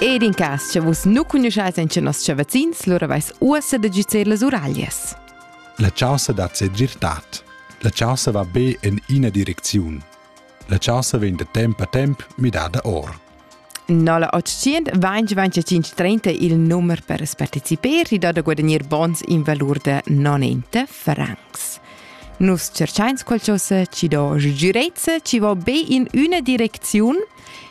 Ed in cas, che vus nu cugnuschais en nos vazzins, lura vais uossa da giuzer las uraglias. La chaussa dat se girtat. La chaussa va be in ina direcziun. La chaussa vegn da temp a temp midada or. 0825 il numero per partecipare ti da guadagnare bons in valore da 90 francs. Nus cerchains qualcosa ci do girezza ci va be in una direcziun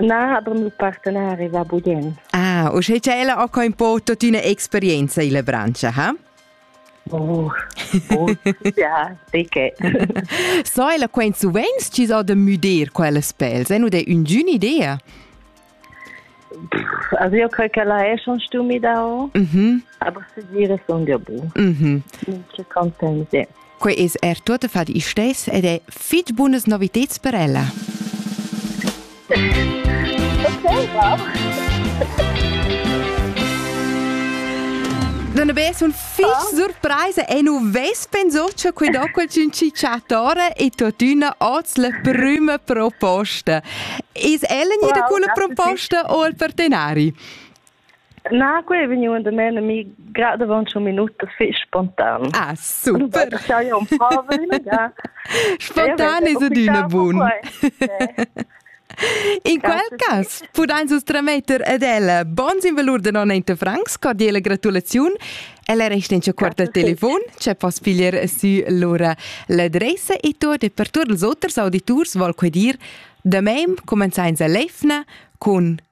Na, aber il partenari va bugien. Ah, usch ha ella auch kein po tut una experienza in la branche, ha? Oh, oh ja, dicke. so ella quen suvent ci so da müder quelles pels, è nu de ungün idea? Also io credo che la è schon stumi da ho, mhm. aber se dire son de bu. Mhm. Molto contenta. Quei es er tuottafat il stess ed è fitg bunas noviteds per ella. Okay, wow. Non be sono fix oh. surpresa e non ves pensato che quei dopo il cinciatore e tuttina oz la prima proposta. Is ella wow, quella proposta o il partenari? Na, quei ei vegniu in domen a mi grad avon tschun minutas fetg spontan. Ah, super. spontan es adüna bun. In quel cas pudain vus trametter ad ella bons in valur de 90 francs, cordiale gratulaziun. Ella resta in quarta telefon, c'è poss piglier su lura l'adressa e to de per tutti els oters auditors vol quei dir da meim comenzains a lefna con